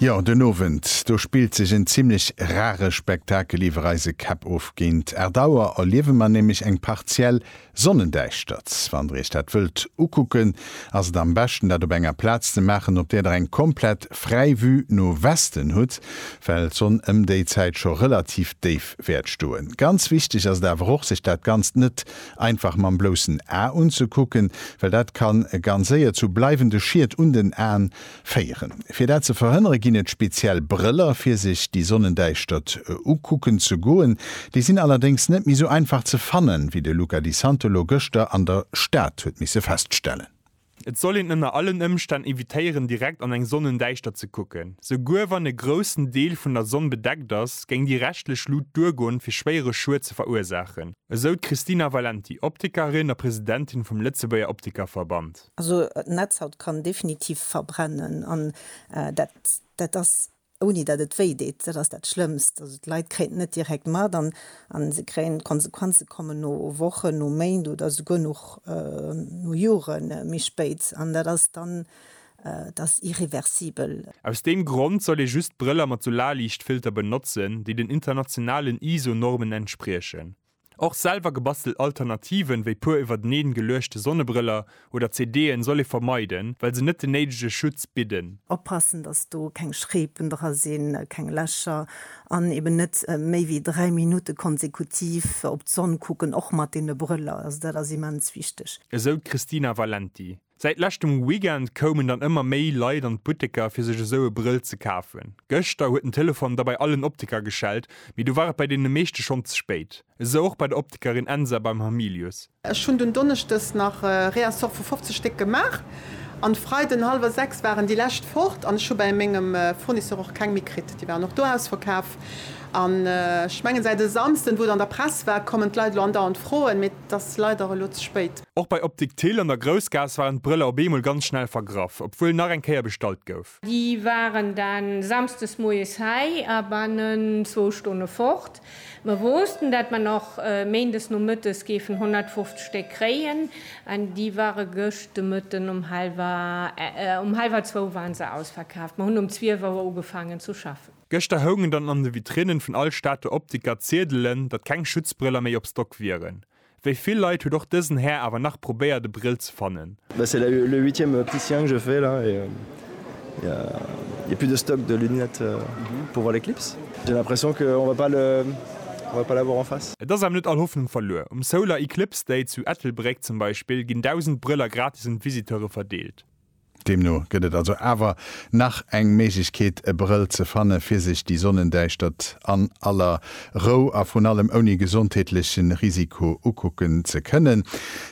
Jo, den Owend do spillt sech en zimlech rare Spektakel iwwer eise Käpp of. Géint 8 Auer erliewe mer nämlech eng partiell Sonnendäischtert. Wann der iech dat wëllt ukucken, ass et am beschten dat op enger Plaz ze maachen, op där der eng komplett fräi Vue no Westen hutt, well d'Sonn ëm déi Zäit scho relativ déif wäert stoen. Ganz wichteg ass et awer och, sech dat Ganzt net einfach mam bloussen A unzekucken, well dat kann ganz séier zu bleiwende Schied un den Aen féieren. Fir dat ze verhënnere ginn et speziell Brëller, fir sech déi Sonnendäischtert ukucken ze goen. Déi sinn allerdéngs net méi sou einfach ze fannen, wéi de Luca Di Santolo gëschter an der Stad huet misse feststellen. Et soll een ënner allen Ëmstänn evitéieren direkt an eng Sonnendäischtert ze kucken. Souguer wann e groussen Deel vun der Sonn bedeckt ass, géing déi reschtlech Lut duergoen, fir schwéiere Schued ze verursaachen, esou d'Christina Valenti, Optikerin a Presidentin vum Lëtzebuerger Optikerverband. Also d'Netzhaut kann definitiv verbrennen an dat ass ouni datt et wéi deet, dat ass dat Schlëmmst. Also d'Leit kréien et net direkt mat an se kréien d'Konsequenze kommen no Wochen, no Méint oder souguer nach no Jore méi spéit an dat ass dann, et ass irreversibel. Aus deem Grond soll ee just Brëller mat Solarliichtfilter benotzen, déi den internationalen ISO-Normen entspriechen. Och selwer gebastelt Alternativen, wéi puer iwwerteneen geluechte Sonnebrëller oder CD'en, soll ee vermeiden, well se net den néidege Schutz bidden. Oppassen, dass do keng Schreepen dra sinn, keng Lächer, an eben net méi wéi 3 Minutte konsekutiv op d'Sonn kucken, och mat deene Brëller. Also dat ass immens wichteg. Esou d'Christina Valenti. Säit leschtem Weekend koumen dann ëmmer méi Leit an d'Butteker fir sech esou e Brëll ze kafen. Gëschter huet den Telefon da bei allen Optiker geschellt, mee do war et bei deene meeschte schonn ze spéit. Esou och bei der Optikerin Ensa beim Hamilius. Ech hunn dunn Donneschdes nach e Réassort vu 50 Stéck gemaach an de Freiden hallwer 6 waren déi lescht fort an ech hu bei mengem Fournisseur och keng méi kritt. Déi waren och do ausverkaf an ech mengen säit e Samsden, wou et an der Press war, kommen d'Leit elo andauernd froen, mee T'ass leider elo ze spéit. Och bei Optik Thill an der Groussgaass waren d'Brëller op eemol ganz schnell vergraff, obwuel nach eng Kéier bestallt gouf. Déi waren dann Samsdes moies hei a bannen zwou Stonne fort. Mer woossten, dat mer nach Méindes Nomëttes géifen 150 Stéck kréien, an déi ware gëscht de Mëtten um hallwer, um hallwer zwou waren se ausverkaaft. Mer hunn um zwielf Auer ugefaangen zu schaffen. Gëschter houngen dann an de Vitrinnen vun all Stater Optiker Ziedelen, datt keng Schutzbrëller méi op Stock wieren. Wéi vill Leit huet och dësen Här awer nach probéiert e Brill ze fannen. Mais c'est le le huitième opticien que je fais là et il ya il ya plus de stock de lunettes pour voir l'éclipse. J'ai l'impression que on va pas le on va pas l'avoir en face. Et ass awer net all Hoffnung verluer. Um Solar Eclipse Day zu Ettelbréck zum Beispill ginn 1.000 Brëller gratis un d'Visiteure verdeelt. Deemno gëtt et also awer nach eng Méiglechkeet e Brëll ze fanne fir sech déi Sonnendäischtert an aller Rou a vrun allem ouni gesondheetleche Risiko ukucken ze kënnen.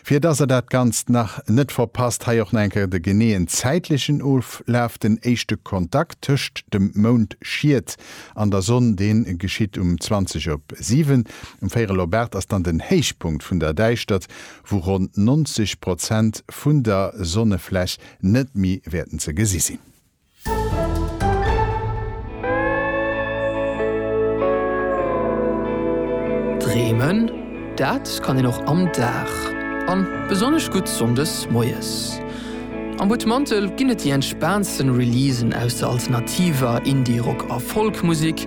Fir dass der dat Ganzt nach net verpasst, hei och nach eng Kéier de geneeën zäitlechen Oflaf, Den éischte Kontakt tëscht dem Moundschiet an der Sonn, dee geschitt um 20 op 7. Um véierel op 8 ass dann den Héichpunkt vun der Däischtert, wou ronn 90 Prozent vun der Sonnefläch net méi wäerten ze gesi sinn. Dreemen, dat kann een och am Dag, an besonnesch gutt Sonndes moies. Am Butmantel ginn et déi entspaantsten Releasen aus der alternativer, Indie-, Rock a Folk-Musek.